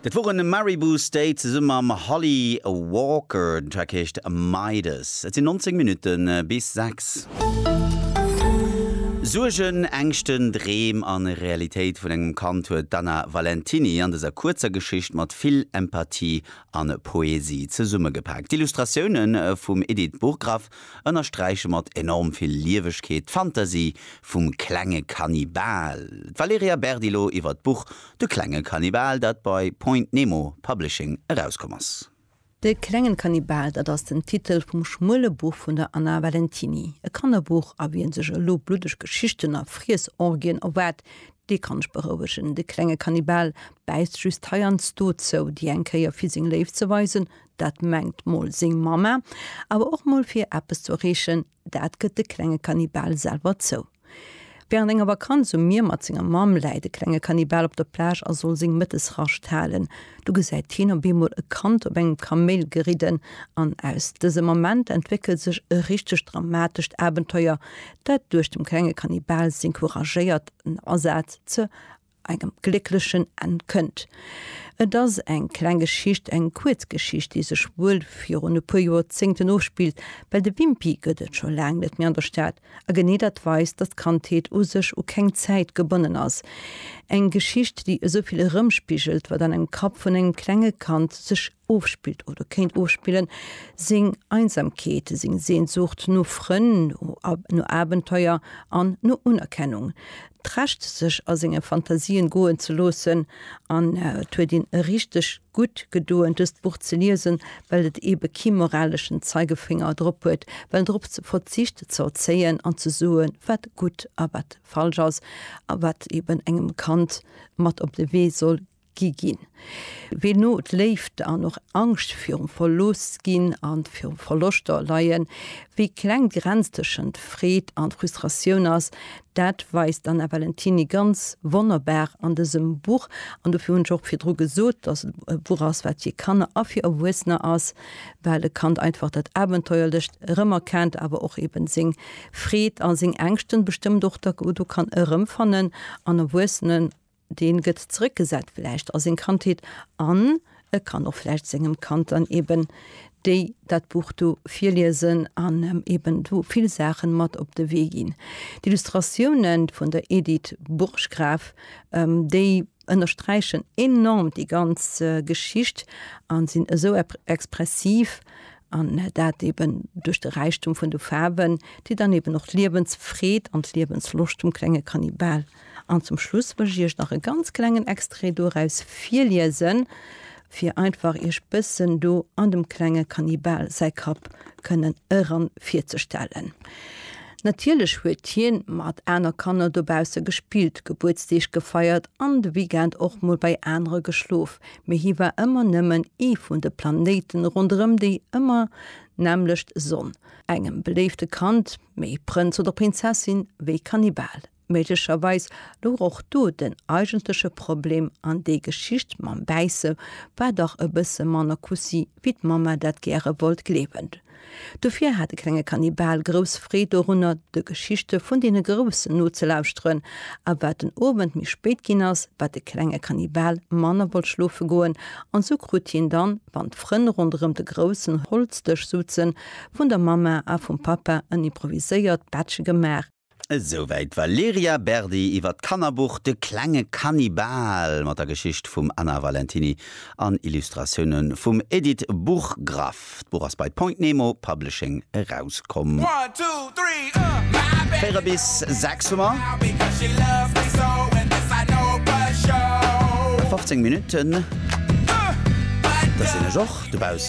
Dat woren de Maribou State zesumme mam Holly Walker. Den Track heescht Midas. Et sinn 19 Minutte bis 6. Suergen, Ängschten, Dreem a Realitéit vun engem Kand huet d'Anna Valentiny an dëser kuerzer Geschicht mat vill Empathie an Poesie zesummegepaakt. D'Illustratioune vum Edith Burggraff ënnersträiche mat enorm vill Liewegkeet d'Fantasie vum klenge Kannibal. D'Valerija Berdilo iwwer d'Buch De klenge Kannibal, dat bei Point Nemo Publishing erauskomm ass. De klengen Kannibal, dat ass den Titel vum schmuele Buch vun der Anna Valentiny. E Kannerbuch, a wien sech elo bluddeg Geschichten a Friessorgien erwaart, dee kann ech berouegen. De klenge Kannibal bäisst just heiansdo zou, déi eng Kéier fir seng Léift ze weisen, dat mengt mol seng Mamma, awer och mol fir eppes ze erreechen, dat gëtt de klenge Kannibal selwer zou. Wärend enger Vakanz um Mier mat senger Mamm läit e klenge Kannibal op der Plage a soll seng Mëttesrascht halen. Du gesäit hien op eemol e Kand op engem Kaméil geridden an aus dësem Ament entwéckelt sech e richtegt dramatescht Abenteuer, dat duerch dem klenge Kannibal seng couragéiert Asaz ze engem glécklechen Enn kënnt. Et ass eng kleng Geschicht, eng kuerz Geschicht, déi sech wuel virun e puer Joerzéngten ofspillt, well de Wimpy gëtt et scho laang net méi an der Stad, a genee dat weist, datt d'Kandheet u sech u keng Zäit gebonnen ass. Eng Geschicht, déi esou vill erëmspigelt, wat an engem Kapp vun engem klenge Kand sech ofspillt oder kéint ofspillen, seng Einsamkeet, seng Sehnsucht no Frënn, no Abenteuer an no Unerkennung, d'Recht sech a senge Fantasien goen ze loossen. An et huet een richteg gutt gedoen dëst Buch ze liesen, well et ebe kee moraleschen Zeigefinger drop huet, well drop verzicht ze erzéien an ze soe wat gutt a wat falsch ass, a wat eben engem Kand mat op de Wee soll gi ginn, wéi no d'Léift an och Angscht virum verlooss ginn an virum Verloschter leien, wéi kleng d'Grenz tëschent Freed an Frustratioun ass, dat weist d'Anna Valentiny ganz wonnerbar an dësem Buch. An dofir hunn ech och virdru gesot, dass et e Buch ass, wat fir Kanner a fir Erwuessener ass, well e Kand einfach dat Abenteuerlecht erëmerkennt, awer och eben seng Freed a seng Ängschten bestëmmt och do kann erëmfannen an Erwuessenen deen gëtt zrëckgesat vläicht a seng Kandheet an e kann och vläicht sengem Kand dann eben déi, dat Buch do virliesen an em eben do vill Saachen mat op de Wee ginn. D'Illustratiounen vun der Edith Burggraf, déi ënnersträichen enorm déi ganz Geschicht an sinn esou expressiv an dat eben duerch de Räichtum vun de Faarwen, déi dann eben och d'Liewensfreed an d'Liewensloscht vum klenge Kannibal An zum Schluss wëll ech iech nach e ganz klengen Extrait doraus virliesen, fir einfach iech bëssen do an dem klenge Kannibal säi Kapp kënnen eran virzestellen. Natierlech huet hien mat aner Kanner dobausse gespillt, Gebuertsdeeg gefeiert an de Weekend och mol bei anere geschlof, mee hie war ëmmer nëmmen ee vun de Planéiten ronderëm déi ëmmer nämmlecht Sonn, engem beléifte Kand, méi Prënz oder Prinzessin wéi Kannibal. Méiglecherweis louch och do den eigentleche Problem an déi Geschicht mam Bäisse war dach e bësse manner Kussi wéi d'Mamma dat gäre wollt gleewen. Dofir hat de klenge Kannibal grouss Freed dorunner de Geschichte vun deene Groussen nozelauschteren a wat den Owend méi spéit ginn ass, wat de klenge Kannibal manner wollt schlofe goen an sou krut hien dann, wann d'Frënn ronderëm de groussen Holzdësch souzen, vun der Mamma a vum Pappa en improviséiert Bettche gemaach. Esouwäit d'Valerija Berdi iwwer d'Kannerbuch De klenge Kannibal mat der Geschicht vum Anna Valentiny an Illustratioune vum Edith Burggraff. D'Buch ass bei Point Nemo Publishing erauskomm. Véier bis sechs hu mer. 15 Minutten, dat sinn ech och dobaussen.